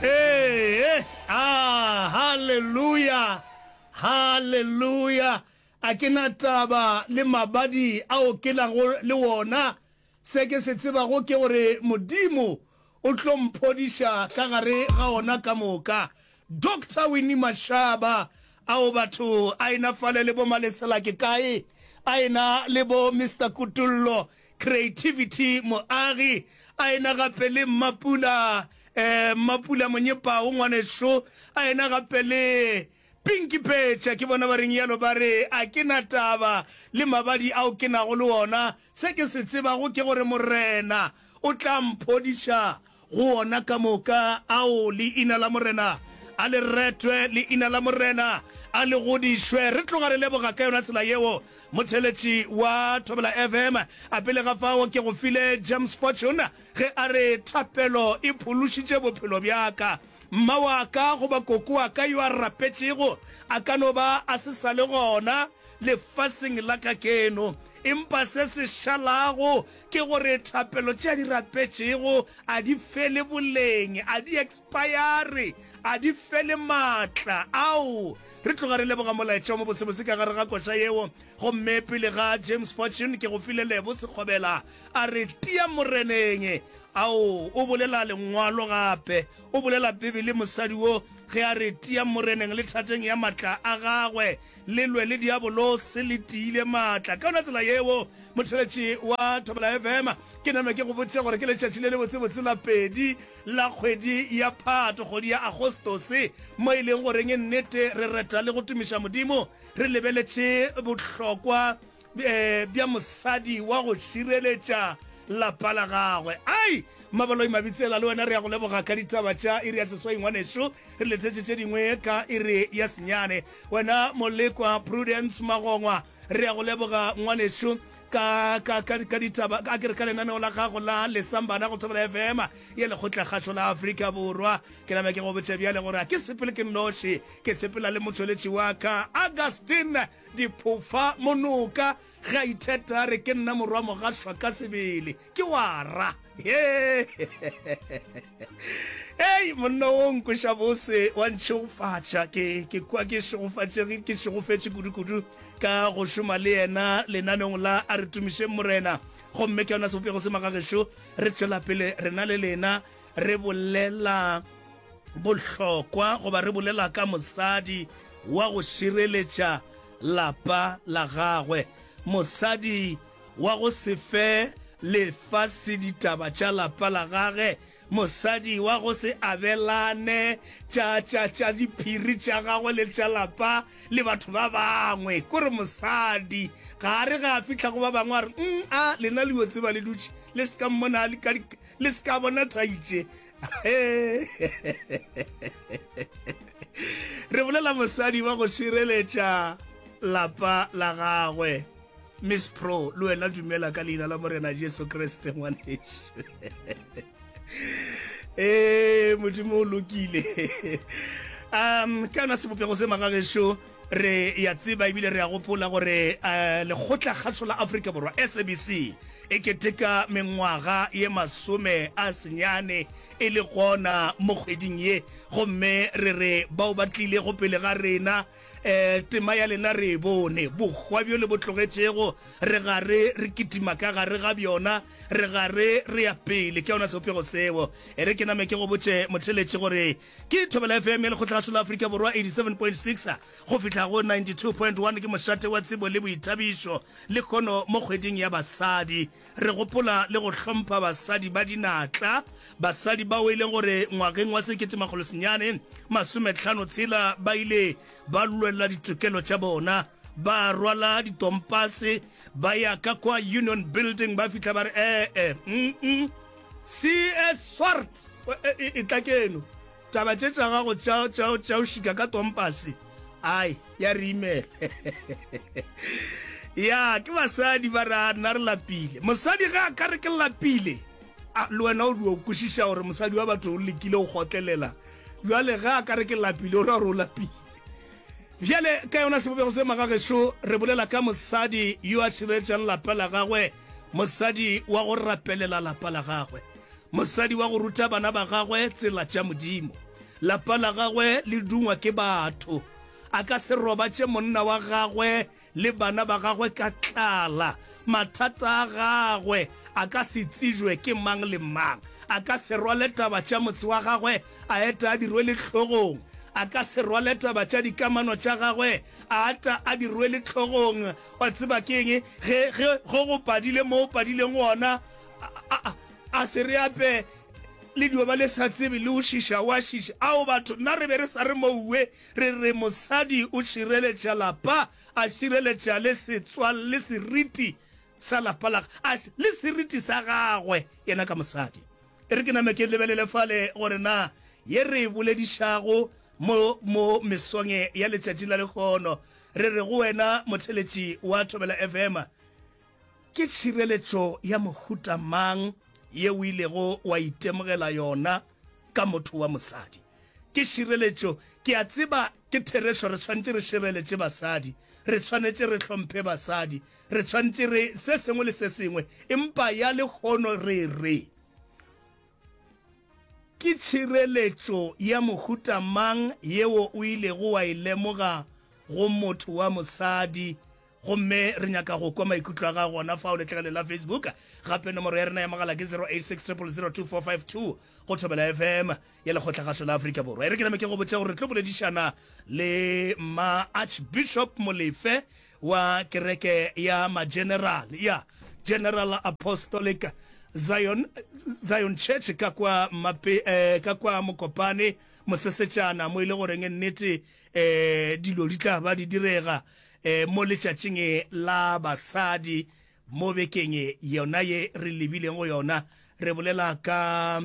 Ee, a, haleluya, haleluya. A ke na taba le mabadi ao ke nago le wona. Se ke se tsebago ke gore Modimo o tlo mphodiša ka gare ga ona ka moka. Doctor Winnie Mashaba, Ao batho a ena fale le bo Malesela ke kae? A ena le bo Mister Kutullo, Creativity Moagi, a ena gape le Mmapula, eh, Mmapula Monyepao ngwaneso, a ena gape le Pinky Pecha, ke bona ba reng yalo ba re a ke na taba le mabadi ao ke nago le ona, se ke se tsebago ke gore Morena o tla mphodiša. Go wona ka moka, ao leina la Morena a le retwe, leina la Morena a le godišwe. Re tloga re leboga ka yona tsela yeo. Motheletši wa Thobela FM a pele ga fao ke go file James Fortune ge a re, Thapelo e phološitše bophelo bja ka. Mma wa ka goba koko wa ka yo a rapetšego a ka no ba a se sa le gona lefaseng la kakeno, empa se se šalago ke gore thapelo tše a di rapetšego a di fele boleng, a di ekspayare, a di fele maatla. Ao! Re tloga re leboga molaetša o mobotsebotse ka gare ga koša yeo. Gomme pele ga James Fortune, ke go file Lebo Sekgobela, a re tia Moreneng. Ao, o bolela Lengwalo gape, o bolela Bibele, mosadi wo, ge a re tia Moreneng le thateng ya maatla a Gagwe. Le lwe le diabolose, le tiile maatla. Ka yona tsela yeo, motheletši wa Thobela FM, ke nanwa ke go botše gore ke letšatši le lebotse-botse la pedi la kgwedi ya Phato, kgwedi ya Agostose, mo e leng goreng nnete re reta le go tumiša Modimo re lebeletše bohlokwa bja mosadi wa go šireletša lapa la gagwe ai maboloi mabitsela le wena re ya go leboga ka ditaba tša iri ya seswai ngwanešu re lethetše tše dingwe ka iri ya senyane wena molekwa prudence magongwa re ya go leboga ngwanešu ka ka ka ka ditaba a ke re ka lenaneo la gago la lesambana go thobela fm ya lekgotla kgašo la afrika borwa ke name ke go botša bjale gore a ke sepele ke nnoši ke sepela le motšweletši wa ka augustine Diphofa, Monoka ge a itheta a re ke nna morwa mogašwa ka sebele, ke wa ra. Ei, monna wo nkoša bose wa ntšhegofatša, ke, ke kwa ke šegofatšege, ke šegofetše kudukudu ka go šoma le yena lenanong la A Re Tumišeng Morena. Gomme ke yona sebopego se magagešo, re tšwela pele rena le lena. Re bolela bohlokwa goba re bolela ka mosadi wa go šireletša lapa la gagwe, mosadi wa go se fe lefase ditaba tša lapa la gage, mosadi wa go se abelane tša, tša, tša diphiri tša gagwe le tša lapa le batho ba bangwe. Ko re mosadi ga a re ge a fihla go ba bangwe a re, Umm, a lena le yo tseba le dutše le se ka mmona ka di, le se ka bona thantše re bolela mosadi wa go šireletša lapa la gagwe miss pro le wena dumela ka leina la morena jesu kriste ngwaneso ee modimo o lokile um ka yona sebopego se magagešo Re ya tseba ebile re ya gopola gore eh, lekgotla kgatho la Afrika Borwa SABC e keteka mengwaga ye masome a senyane e le gona mo kgweding ye gomme re re bao ba tlile go pele ga rena eh tema ya lena re e bone bokgwa bjo le bo tlogetšego re gare re kitima ka gare ga bjona re gare re ya pele ke yona seopego seo e re ke name ke go botše motheletše gore Ke Thobela FM ya Lekgotla la Solo Afrika Borwa 87.6 go fihla go 92.1 ke mošate wa tsebo le boithabišo lekhono mo kgweding ya basadi. Re gopola le go hlompha basadi ba dinatla, basadi bao e leng gore ngwageng wa sekete makgolo senyane masometlhano tshela ba ile ba lwelela ditokelo tša bona ba rwala ditompase ba ya ka kwa Union Building ba fihla ba re ee, mm, mm. Cee Swart etla keno taba tše tša gago tša o šika ka tompase ai ya re imela ya ke basadi ba re a nna re lapile mosadi ge a ka re ke lapile le wena o dio kwešiša gore mosadi wa batho o lekile go gotlelela jale ge a ka re ke lapile o ra gore o lapile bjale ka yona sebopego se magagešo re bolela ka mosadi yo a širetšang lapa la gagwe mosadi wa go rapelela lapa la gagwe mosadi wa go ruta bana ba gagwe tsela tša modimo lapa la gagwe le dungwa ke batho a ka se robatše monna wa gagwe le bana ba gagwe ka tlala mathata a gagwe a ka se tsejwe ke mang le mang a ka se rwale taba tša motse wa gagwe a eta a di rwele tlhogong a ka se rwale taba tša dikamano tša gagwe a ata a di rwele tlhogong Wa tseba ke eng? Ge, ge, ge go padile mo o padileng gona, a, a, a, a se re ape le dio ba le sa tsebe le o šiša, wa šiša. Ao, batho, nna re be re sa re mouwe, re re mosadi o šireletša lapa, a šireletša le setswal, le seriti sa lapa la, a, le seriti sa gagwe yena ka mosadi. E re ke name ke lebelele fale gore na ye re e boledišago mo, mo mesong e ya letšatši la lehono Re re go wena motheletši wa Thobela FM, ke tšhireletšo ya mohuta mang ye o ilego wa itemogela yona ka motho wa mosadi? Ke šireletšo, ke a tseba ke therešo, re swanetše re šireletše basadi, re swanetše re hlomphe basadi, re swanetše re se sengwe le se sengwe, empa ya lehono re re, Ke tšhireletšo ya mohuta mang yeo o ilego wa e lemoga go motho wa mosadi? Gomme re nyaka go kwa maikutlo a gago gona fao letlakaleng la Facebook. Gape nomoro ya rena ya mogala ke 0860002452 go Thobela FM ya Lekgotlagašo la Afrika Borwa. E re ke name ke go botše gore re tlo boledišana le Mma Archbishop Molefe wa kereke ya mageneral ya General Apostolic Zion, Zion Church ka kwa, mape, eh, ka kwa Mokopane mosesetšana mo ile e goreng nnete eh, dilo di tla ba di direga eh, mo letšatšing la basadi Mo bekeng yona ye re lebileng go yona, re bolela ka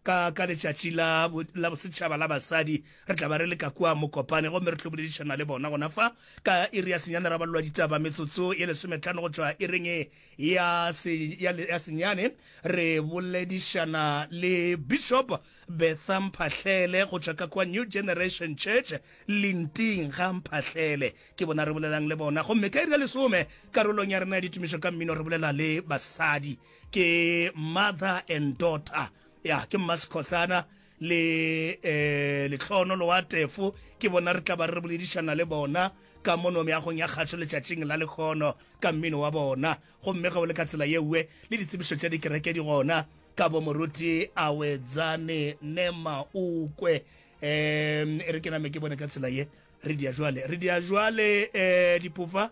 ka ka letšatši la la bosetšhaba la basadi. Re tla ba re le ka kua Mokopane gomme re tlo boledišana le bona gona fa ka iri ya senyane ra balelwa ditaba metsotso ye lesometlhano go tšwa iring ya se ya, ya senyane. Re boledišana le Bishop Bertha Mphahlele go tšwa ka kua New Generation Church Linting ga Mphahlele. Ke bona re bolelang le bona. Gomme ka iri ya lesome, karolong ya rena ya ditumišo ka mmino, re bolela le basadi. Ke mother and daughter. Ya, ke Mma Sekhosana le um Letlhono Loatefo. Ke bona re tla ba re boledišana le bona ka mono meagong ya kgašo letšatšing la lekgono ka mmino wa bona. Gomme ge o le ka tsela ye nngwe, le ditsebišo tša dikereke di gona ka bo Moruti Awedzane Nemaukwe. Um e re ke name ke bone ka tsela ye. re dia jwale re dia jwale eh dipofa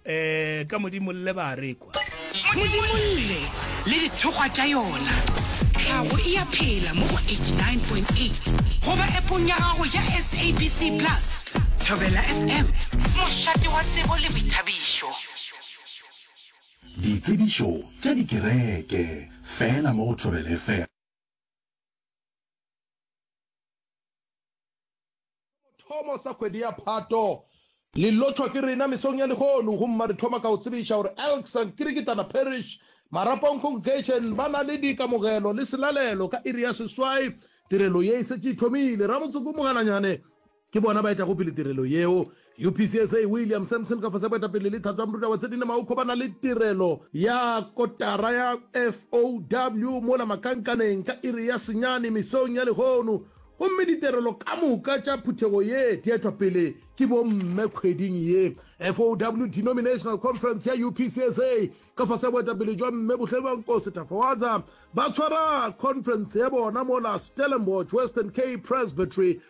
eh ka modimo le ba rekwa modimo le le dithokgwa tša yona tlhago e ya phela mo go 89.8 goba epong ya gago ya sabc plus thobela fm mošate wa tsebo le boithabišo ditsebišo tša dikereke fela mo go thobela fm Thomo sa kgwedi ya Phato. Le lotšhwa ke rena mesong ya lehono. Go mma re thoma ka go tsebiša gore Elk St. Kirikitana Parish, Marapong Congregation ba na le dikamogelo le selalelo ka iri ya seswai. Tirelo ye e setše e thomile. Ramotse ko Mogalanyane ke bona ba etago pele tirelo yeo. UPCSA, William Sampson ka fase ga boetapele le tlhatso ya moruta wa Tshedine Maukho ba na le tirelo ya kotara ya FOW mola Makankaneng ka iri ya senyane mesong ya lehono gomme ditirelo ka moka tša phuthego ye di etwa pele ke bomme kgweding ye. FOW Denominational Conference ya UPCSA ka fase ga boetapele jwa Mme Buhlelwankosi Tafawadza ba tshwara khonferense ya bona mola Stellenbosch Western Cape Presbytery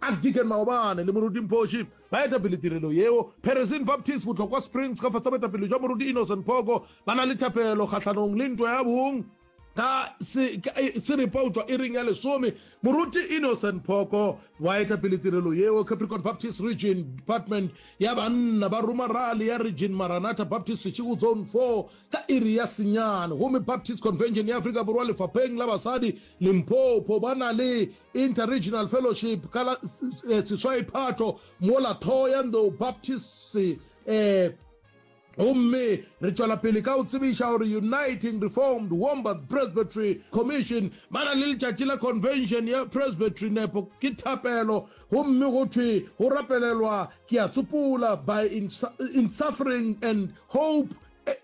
Archdeacon Maobane le Moruti Mphoshi ba eta pele tirelo yeo. Peresin Baptist Botlokwa Springs ka fase boetapele jwa Moruti Innocent Phoko ba na le thapelo kgahlanong le ntwa ya bong. Ka se ka se repautšwa iring ya lesome, Moruti Innocent Phoko wa eta pele tirelo yeo. Capricorn Baptist Region Department ya banna ba ruma rally ya Region Maranatha Baptist Seshego Zone Four ka iri ya senyane gomme Baptist Convention ya Afrika Borwa lefapheng la basadi Limpopo ba na le Inter-Regional Fellowship ka la seswai Phato mola Thohoyandou Baptists eh, gomme re tšwela pele ka go tsebiša gore Uniting Reformed Wombat Presbytery Commission ba na le letšatši la Convention ya Presbytery nepo ke thapelo gomme go thwe go rapelelwa ke a tsopola by in, in suffering and hope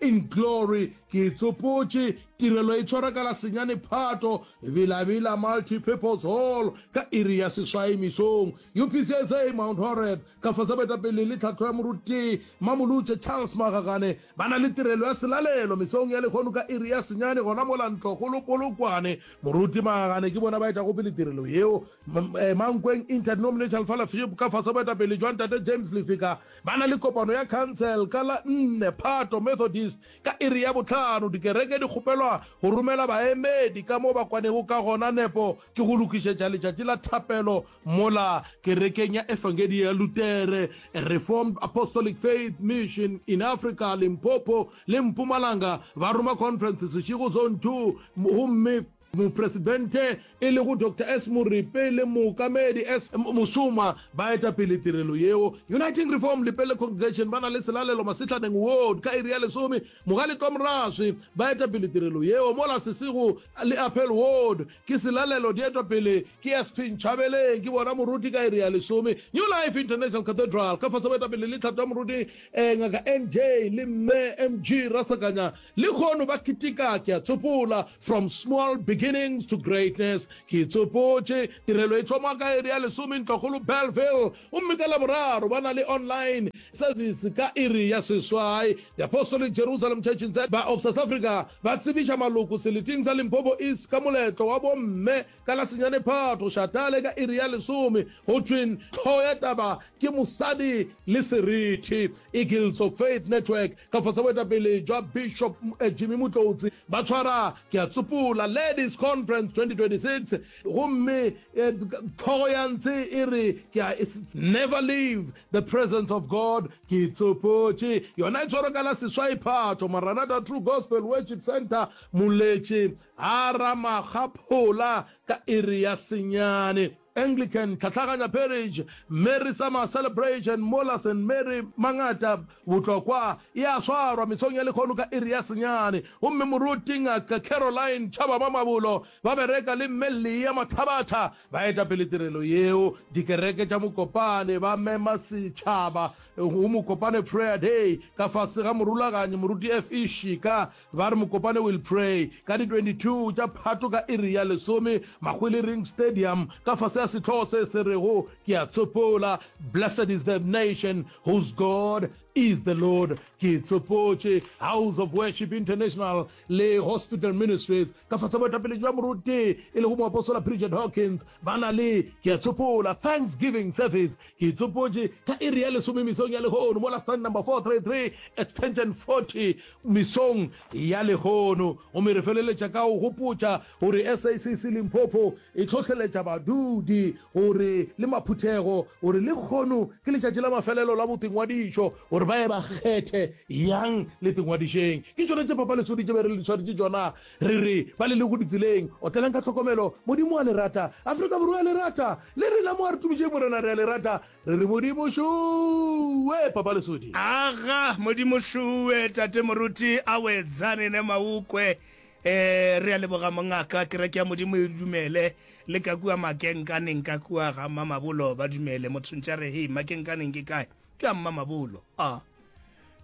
In Glory, ke e tsopotše, tirelo e tshwarwa ka la senyane Phato, Villa Villa Multipurpose Hall, ka iri ya seswai mesong. UPCSA Mount Horeb, ka fase boetapele le tlhatlo ya Moruti Mmamolutše Charles Magagane, ba na le tirelo ya selalelo mesong ya lehono ka iri ya senyane gona mola Ntlokgolo Polokwane. Moruti Magagane ke bona ba etšago pele tirelo yeo Mankweng Interdenominational Fellowship ka fase boetapele jwa Ntate James Lefika. Ba na le kopano ya khansele ka la nne Phato, Methodist, ka iri ya bohlano. Dikereke di kgopelwa go romela baemedi ka mo ba kwanego ka gona. Nepo ke go lokišetša letšatši la thapelo mola Kerekeng ya Efangedi ya Lutere, Reformed Apostolic Faith Mission in Africa, Limpopo le Mpumalanga, ba roma khonferense sešego Zone Two, gomme, Mopresidente e lego Doctor S. Moripe le Mookamedi S. Musoma ba eta pele tirelo yeo. Uniting Reform Lepelle Congregation ba na le selalelo Masehlaneng Ward ka iri ya lesome. Mogaletwa Moraswi ba eta pele tirelo yeo. Mola Sesego le Apel Ward ke selalelo di etwa pele ke Sp. Nchabeleng ke bona moruti ka iri ya lesome. New Life International Cathedral ka fase ba eta pele le tlhato ya moruti Ngaka N. J. le Mme M. G. Rasakanya. Lehono ba keteka ke a tsopola, from small beginnings to greatness. Ke e tsopotše. Tirelo e thoma ka iri ya lesome Ntlwakgolo Bellville, gomme ka Laboraro ba na le online service ka iri ya seswai. Diapostolic Jerusalem Church in Za ba of South Africa ba tsebiša maloko seleting sa Limpopo East ka moletlo wa bomme. Ka la senyane Phatho Shatale ka iri ya lesome go thweng tlho ya taba ke mosadi le seriti. Eagles of Faith Network ka fase boetapele jwa Bishop eh, Jimmy Mutlotsi ba tshwara ke a tsopola Ladies Conference 2026 gomme eh, tlhogo ya ntshe e re ke a never leave the presence of God ke tsopotše yona e tshwarwa ka la seswai Phatho Maranatha True Gospel Worship Center Moletše A ra makgaphola ka iri ya senyane. Anglican, Tlhatlhaganya Parish, Mary Summer Celebration, mola St. Mary Mangata, Botlokwa, e a swarwa mesong ya lekgono ka iri ya senyane. Gomme Moruti Ngaka Caroline Chabama Mabolo, ba bereka le Mme Leah Mathabatha, ba eta pele tirelo yeo. Dikereke tša Mokopane ba mema setšhaba go Mokopane Prayer Day ka fase ga morulaganyi Moruti FE Shika. Ba re mokopane will pray ka di 22 tša Phato ka iri ya lesome Mahwele Ring Stadium ka fase ya sehlogo se se rego Ke a Tsopola, Blessed is the Nation whose God is the Lord. Ke tsopotše House of Worship International le Hospital Ministries ka fase boetapele jwa moruti e lego moapostola Bridget Hawkins ba na le Ke a Tsopola Thanksgiving Service. Ke tsopotše ka iri ya lesome mesong ya lehono mola stand number 433 extension 40 mesong ya lehono. Gomme re feleletša ka go gopotša gore SACC Limpopo e hlohleletša badudi gore le maphuthego gore lekgono ke letšatši la mafelelo la botingwadišo gore ba ye ba kgethe yang letingwadišeng. Ke tšona tše Papa Lesodi tše be re le swaretše tšona re re ba le lego ditseleng. Otlelang ka tlhokomelo. Modimo wa le rata. Afrika Borwa ya le rata. Le rena mo a re tumišeng Morena re a le rata. Re re Modimo šuwe Papa Lesodi. Aga Modimo šuwe Tate Moruti Awetsane ne Maukwe e re a leboga mongaka kereke ya Modimo e dumele le ka kua Makenkaneng ka kua ga mma Mabolo ba dumele motho ntša re hei Makenkaneng ke kae ke a mma Mabolo a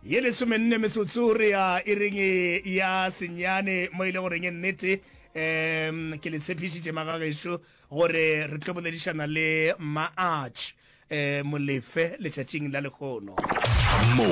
ye lesome nne metsotso re ya e reng ya senyane mo ile goreng e nnete um ke le tshepišitše magagešo gore re tlo boledišana le mma arch um molefe letšatšing la lekgono mo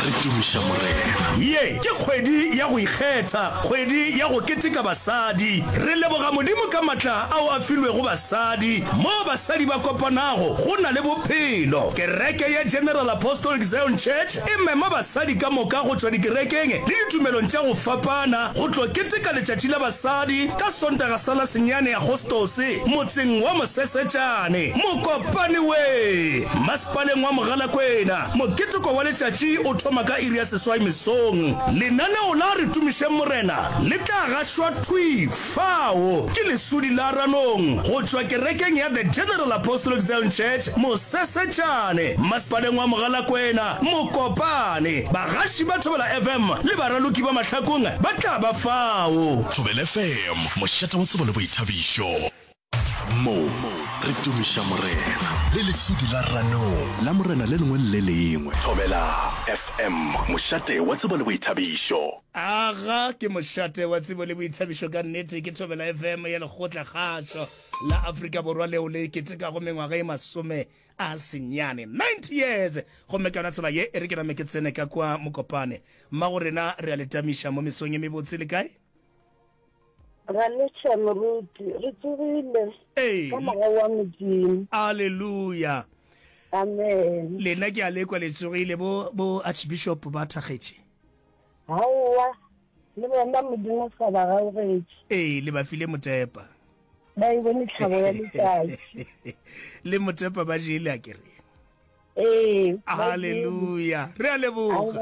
re tumiša morena ye ke kgwedi ya go ikgetha kgwedi ya go keteka basadi re leboga modimo ka matla ao a filwego basadi mo basadi ba kopanago go na le bophelo kereke ya general apostolic zion church e mema basadi ka moka go tšwa dikerekeng le ditumelong tša go fapana go tlo keteka letšatši la basadi ka Sontaga sa la senyane Agostose motseng wa Mosesetšane, Mokopane we. Masepaleng wa Mogalakwena, moketeko wa letšatši o thoma ka iri ya seswai mesong. Lenaneo la Re Tumišeng Morena le tla gašwa thwi fao ke lesudi la ranong go tšwa kerekeng ya The General Apostolic Zion Church, Mosesetšane, Masepaleng wa Mogalakwena. Mokopane, bagaši ba Thobela FM le baraloki ba mahlakong ba tla ba fao. Thobela FM, mošate wa tsebo le boithabišo. Mo re tumiša Morena. Le lesudi la ranong. La Morena le lengwe le le lengwe. Thobela FM, mošate wa tsebo le boithabišo. Aga ke mošate wa tsebo le boithabišo ka nnete. Ke Thobela FM ya Lekgotla-kgašo la Afrika Borwa leo le ketekago mengwaga e masome A se nnyane, ninety years! Gomme ka yona tsela ye, e re ke name ke tsene ka kwa Mokopane. Mmago rena re a le tamiša mo mesong e mebotse. Le kae? Ra letša, moruti. Re tsogile Ee. ka Moya wa Modimo. Aleluya! Amen. Lena ke a lekwa le tsogile. Bo, bo archbishop ba thakgetše. Aowa, le bona Modimo sa ba gaogetše. Ee, le ba file motepa. Ba e bone tlhabo ya letšatši. Le motepa ba jele a kere. Ee, Haleluya. Re a leboga.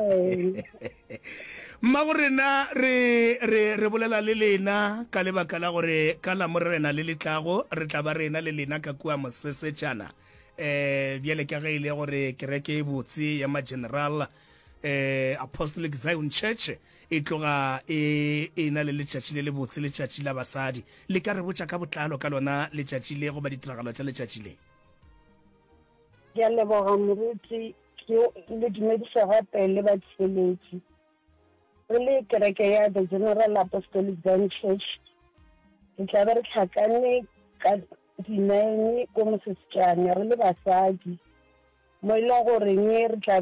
Mmago rena re re re bolela le lena ka lebaka la gore ka la morena le letlago re tla ba rena le lena ka kua mosesetšana eh bjale ka ge e le gore kereke e botse ya ma general eh apostolic zion church e tloga e e na le letšatši le lebotse letšatši la basadi le ka re botša ka botlalo ka lona letšatši le goba ditiragalo tša letšatši le ke a leboga moruti ke le dumedisa gape le batsheletši re le kereke ya the general apostolic zion church re tla be re tlhakane ka dinine ko mosesetsana re le basadi mo e leng goreng re tla